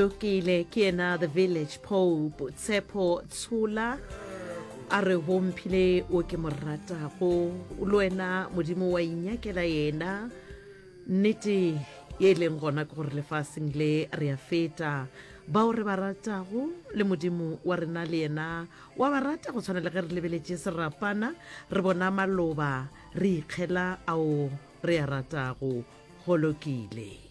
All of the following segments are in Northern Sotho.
Lokile ke yena the village pope tshepo tshola a re go mphile o ke mo ratago le wena modimo wa inyakela yena nnete ye e leng gona ke gore lefaseng le re a feta bao re ba ratago le modimo wa rena le yena wa ba rata go tshwana le ge re lebeletše serapana re bona maloba re ikgela ao re a ratago go lokile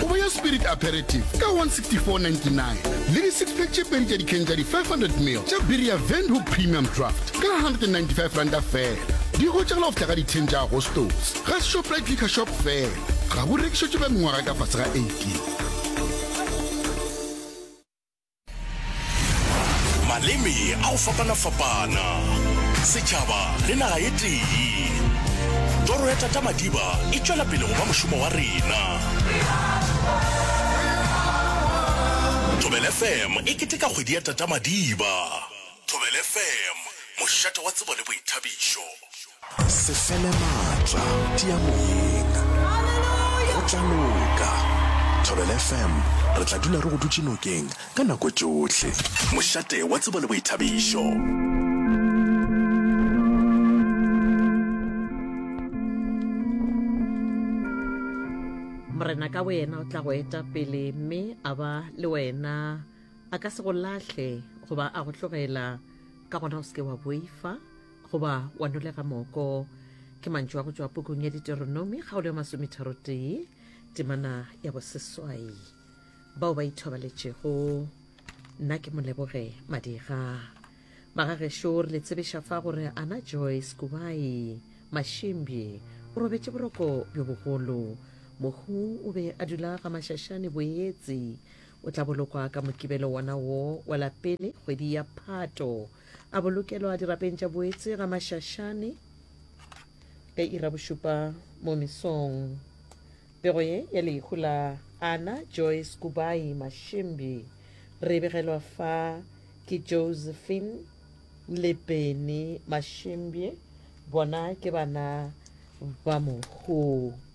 Kobo ya Spirit Aperitif ka 164.99 le di-sixpack tše pedi tša dikhen tša di-500 ml tša biri ya Windhoek Premium Draft ka 195 ranta feela. Di hwetšagala go fihla ka di 10 tša Agostose ga Shoprite Liquor Shop feela. Ga bo rekišetšwe ba mengwaga e ka fase ga 18. Maleme a go fapana-fapana, setšhaba le naga ye tee. Toro ya Tata Madiba e tšwela pele go ba mošomo wa rena. Thobela FM e keteka kgwedi ya Tata Madiba. Thobela FM, mošate wa tsebo le boithabišo. Se fele maatla, tia moyeng. Go tla loka. Thobela FM, re tla dula re go dutše nokeng ka nako tšohle. Mošate wa tsebo le boithabišo. morena ka boyena o tla go eta pele mme a ba le wena a ka se go lahle goba a go tlogela ka gona o seke wa boifa goba wa nolega moko ke mantšu a go tšwa pukung ya diteronomi kgaolo ya masometharotee temana ya boseswai bao ba ithobaletšego nna ke moleboge madira magagešo re le tsebiša fa gore ana joyce kubai mašimbi o robetše boroko bjo bogolo mohu o be a dula ga mašašane boetsi o tla bolokwa ka mokibelo wona wo wa lapele kgwedi ya phato A bolokelwa dirapeng tša boetse ga mašašane ka ira bošupa mo mesong. Pego ye ya lehu la Anna Joyce Kubai Mashimbi re e begelwa fa ke Josephine le Benny Mashimbi, bona ke bana ba mohoo.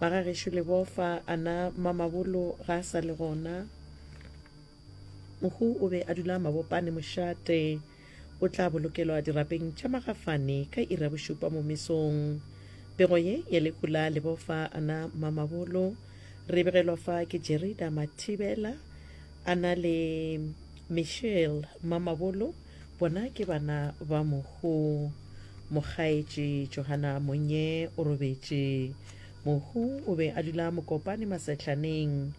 Ba ga gešo Lebofa, a na Mamabolo ga a sa le gona? Mohu o be a dula Mabopane mošate. O tla bolokelwa dirapeng tša Magafane ka iri ya bošupa mo mesong. Pego ye ya lehu la Lebofa, a na Mamabolo, re begelwa fa ke Jerida Mathibela, a na le Michelle Mamabolo, Bona ke bana ba Mohu. Mokgaetši Johana Monye o robetše. Mohu o be a dula Mokopane Masehlaneng.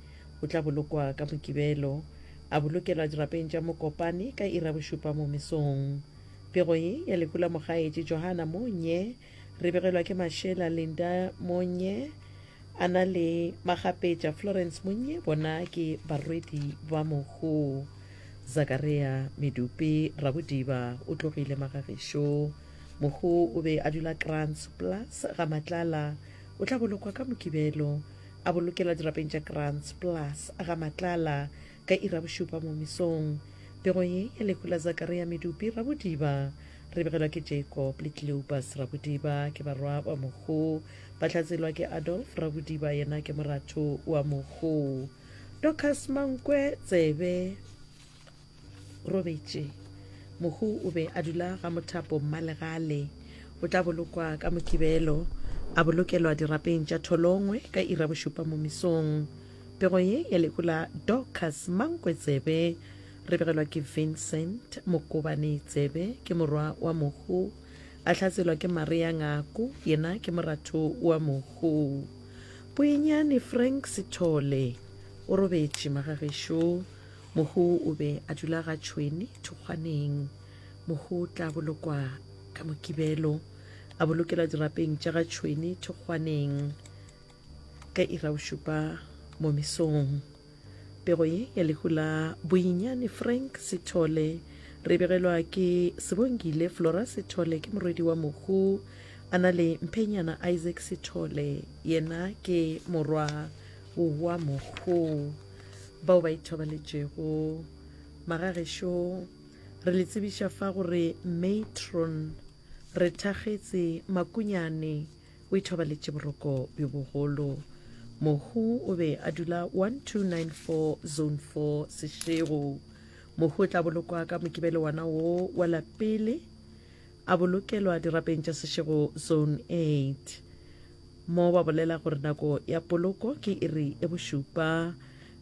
O tla bolokwa ka Mokibelo. A bolokelwa dirapeng tša Mokopane ka iri ya bošupa mo mesong. Pego ye ya lehu la Mokgaetši Johana Monye Re begelwa ke Mashela Linda Monye a na le Magapetša Florence Monye bona ke barwedi ba mogo Zakaria Medupe Rabodiba o tlogile Magagišo mogo o be a dula Krans Plus ga Matlala o tla bolokwa ka Mokibelo a bolokela dirapeng tša Krans Plus ga Matlala Ka iri ya bošupa mo mesong, pego ye ya lehu la Zakaria Medupi Rabodiba re begelwa ke Jacob le Cleopas Rabodiba ke barwa ba Mokgo, ba tla tselwa ke Adolf Rabodiba yena ke moratho wa Mokgo. Dorcas Mankwe Tsebe robetše. Mokgo o be a dula ga Mothapo Mmalegale. O tla bolokwa ka Mokibelo, a bolokelwa dirapeng tša Tholongwe ka iri ya bošupa mo mesong. Pego ye ya lehu la Dorcas Mankwe Tsebe re begelwa ke Vincent Mokobane Tsebe ke morwa wa Mohu a hlatselwa ke Maria Ngako yena ke moratho wa Mohu. Poenyane Frank Sithole o robetše magagešo Mohu o be a dula ga Tšhweni Thokgwaneng. Mohu o tla bolokwa ka Mokibelo a bolokelwa dirapeng tša ga Tšhweni Thokgwaneng. Ka ira o šupa mo mesong, pego ye ya lehu la boinyane Frank Sithole re begelwa ke Sebongile Flora Sithole ke morwedi wa mohu a na le Mphenyana Isaac Sithole yena ke morwa wa mohu bao ba ithobaletšego magagešo re le tsebiša fa gore matron re thakgetse makunyane O ithobaletše boroko bjo bogolo. Mohu o be a dula 1294 Zone 4 Sešego. Mohu o tla bolokwa ka mokibelo wana wo wa lapele a bolokelwa dirapeng tša Sešego Zone 8 mo ba bolela gore nako ya poloko ke iri e bošupa.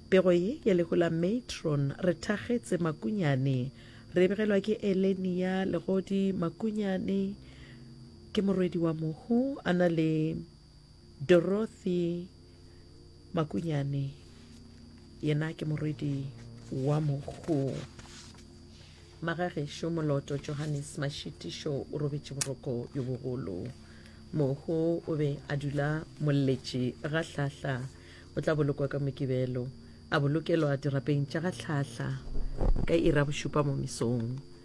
Pego ye ya lehu la matron re thakgetse Makunyane re begelwa ke Elenia Legodi Makunyane. Ke morwedi wa mohu a na le Dorothy Makunyane, yena ke morwedi wa mohu. Magagešo Moloto Johannes Mashitišo o robetše boroko yo bogolo. Mohu o be a dula molletše ga Hlahla. O tla bolokwa ka Mokibelo, a bolokelwa dirapeng tša ga Hlahla ka ira bošupa mo mesong.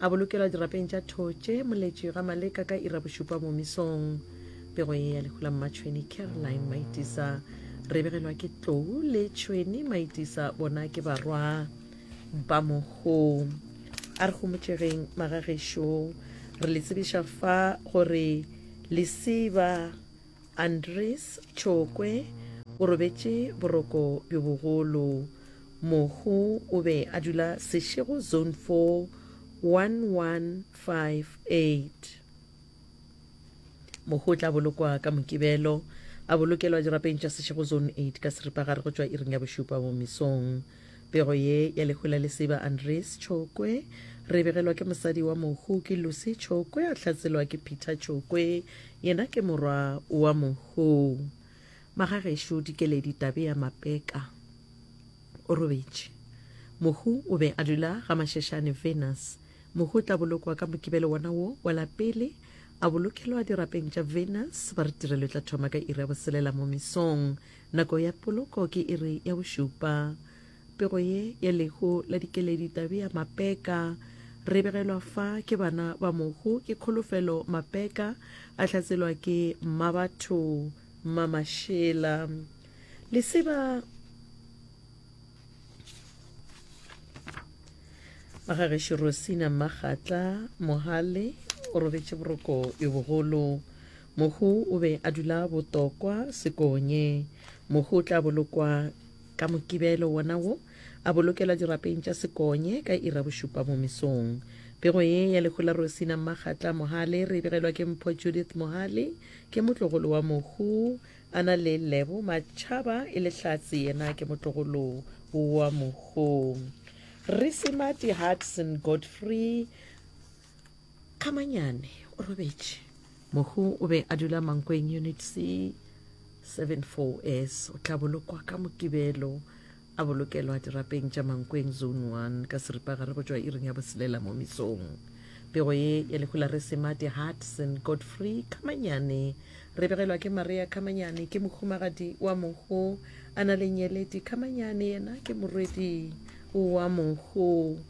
A bolokelwa dirapeng tša Thotše, Moletši, ga Maleka ka ira bošupa momisong. Pego ye ya lehu la mmatšhweni Caroline Maitisa. Re begelwa ke Tlou le Tšhweni Maitisa, bona ke barwa ba moho. A re gomotšegeng magagešo, re le tsebiša fa gore lesiba Andries Tšhokwe o robetše boroko bjo bogolo. Mohu o be a dula Seshego Zone 4 1158. Mohu o tla bolokwa ka Mokibelo, a bolokelwa dirapeng tša Seshego Zone 8 ka seripagare go tšwa iring ya bošupa mo mesong. Pego ye ya lehu la lesiba Andries Tšhokwe re e begelwa ke mosadi wa mohu ke Lucy Tšhokwe a hlatselwa ke Peter Tšhokwe yena ke morwa wa mohu. Magagešo Dikeledi Tabea Mapeka o robetše. Mohu o be a dula ga Mashešane Venus. Mohu o tla bolokwa ka Mokibelo wona wo wa la pele a bolokelwa dirapeng tša Venus ba re tirelo e tla thoma ka iri ya boselela mo mesong Nako ya poloko ke iri ya bošupa. Pego ye ya lehu la dikeledi Tabea Mapeka. Re begelwa fa ke bana ba mohu ke Kholofelo Mapeka, a hlatselwa ke Mmabatho Mmamashela. Leseba ba ga gešo Rosina Mmagatla Mohale o robetše boroko yo bogolo. Mohu o be a dula botokwa sekonye. Mohu o tla bolokwa ka Mokibelo wona wo, a bolokelwa dirapeng tša sekonye ka ira bošupa mo mesong. Pego ye ya lehu la Rosina Mmakgatla Mohale re e begelwa ke Mpho Judith Mohale, ke motlogolo wa Mohu, a na le Lebo Matšhaba e le Hlatse yena ke motlogolo wa Mohu. Rre Semati Hudson Godfrey, Kamanyane o robetše. Mohu o be a dula Mankweng Unit C 74S. O tla bolokwa ka Mokibelo a bolokelwa dirapeng tša Mankweng Zone 1 ka seripagare go tšwa iring ya boselela mo mesong. Pego ye ya lehu la Resemate Hudson Godfrey Kamanyane re begelwa ke Maria Kamanyane ke mohumagadi wa mohu a na le nyeledi Kamanyane yena ke morwedi wa mohu.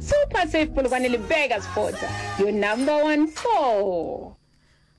Super Safe Polokwane le Burger Sports, your number one for.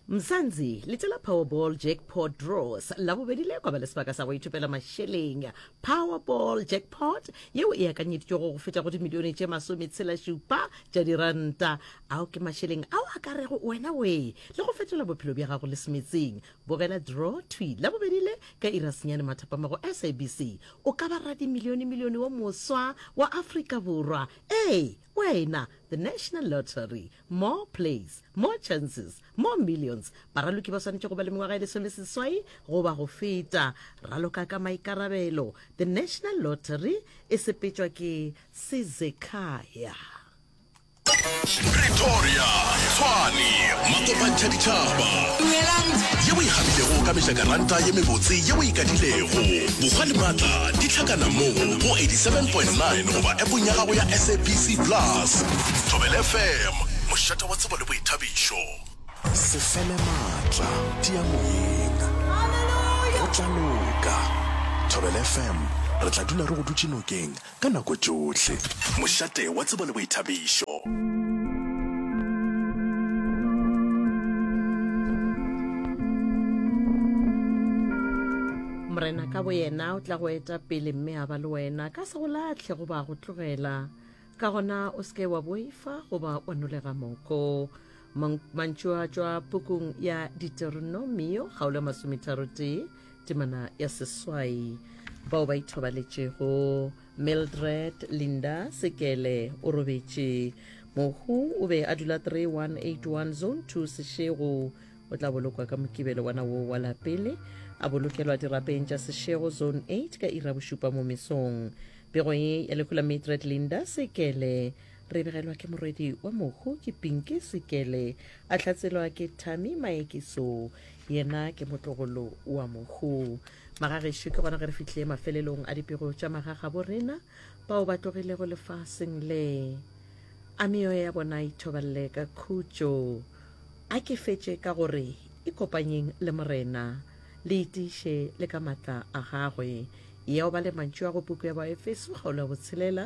Mzansi, letshe la Powerball Jackpot Draws la bobedi le koba le sebaka sa go ithopela mašeleng. Powerball Jackpot yeo e akanyeditšwego go feta go dimilione tše masometshelašupa tša diranta. Ao ke mašeleng ao a ka rego wena wee le go fetola bophelo bja gago le semetseng. bogela draw twi la bobedi le ka irasenyane mathapama go sabc o ka ba radimilione milione wa moswa wa afrika borwa ee wena the national lottery more plays more chances more millions baraloki ba swanetše go ba le mengwaga e lesomeseswai goba go feta raloka ka maikarabelo the national lottery e sepetšwa ke sezekaya Pretoria, Tshwane, Makopantsha Ditšhaba. Dumelang. Ye o e kgabitego ka mejakaranta ye mebotse ye o e kadilego. Bokgwa le matla di tlhakana mo go 87.9 goba appong ya gago ya SABC Plus. Thobela FM, mošate wa tsebo le boithabišo. Se fele matla, tia moyeng. Go tla loka. Thobela FM, re tla dula re go dutše nokeng. Ka nako tšohle. Mošate wa tsebo le boithabišo. Morena ka boyena o tla go eta pele mme a ba le wena, ka se go latlhe goba go tlogela. Ka gona o se ke wa boifa goba wa nolega moko. Mang- Mantšu a tšwa pukung ya Diteronomio, kgaolo ya masometharotee, temana ya seswai bao ba ithobaletšego mildred linda sekele o robetše mohu o be a dula 3181 zone 2 sešego o tla bolokwa ka mokibelo wana woo wa lapele a bolokelwa dirapeng tša sešego zone 8 ka ira bošupa mo mesong pego ye ya lehu la mildred linda sekele re begelwa ke morwedi wa mohu ke pinki sekele a tlatselwa ke tami maekiso yena ke motlogolo wa mohu magagešo ke gona ge re fitlhile mafelelong a dipego tša magaga bo rena bao ba tlogilego lefaseng le a meyo ya bona ithobalele ka khutšo a ke fetše ka gore e kopanyeng le morena le itiše le ka matla a gagwe yeo ba le mantšu a go puku ya baefeso kgaolo ya botshelela